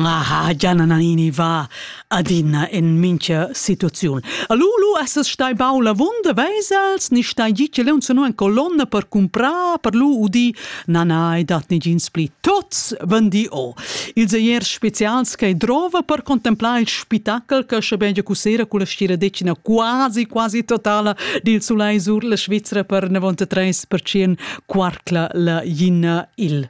Aha, Gianna Nannini va adina en mincha situaziun. All'ulu essas stai bau la vunda vesels, ni stai gi che leun senu en colonna per cumprar, per lu udi, na nai dat negins pli tots vendi o. Ils eiers specials che drova per contemplar il spettacol che schabegia cusera con la stiradecina quasi quasi totala dil sulai sur la Svizzera per 93% quarcla la ginna il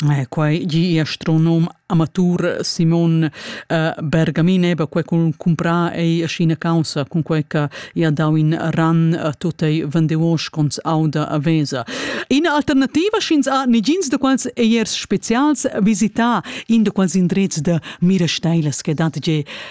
Eh, quai gi astronom amatur Simon eh, Bergamin eba quai cun cumprar ei asina causa cun quai che ia dau in ran a tot ei vendeuos cons auda a vesa. Ina alternativa schins a nigins de quals eiers spezials visita in de quals indrez de mira steilas che dat ge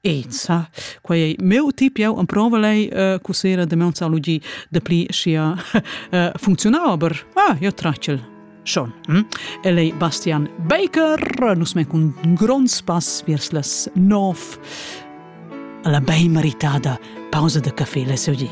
Eza. Quai è meu tip, jau amprova lei uh, cusera de meonzalogi de pli sia uh, funzionau, aber ah, io tracel. Schon. Hm? E lei Bastian Baker, nus men cun grond spass viers las nov, la bei meritada pausa de café le seudi.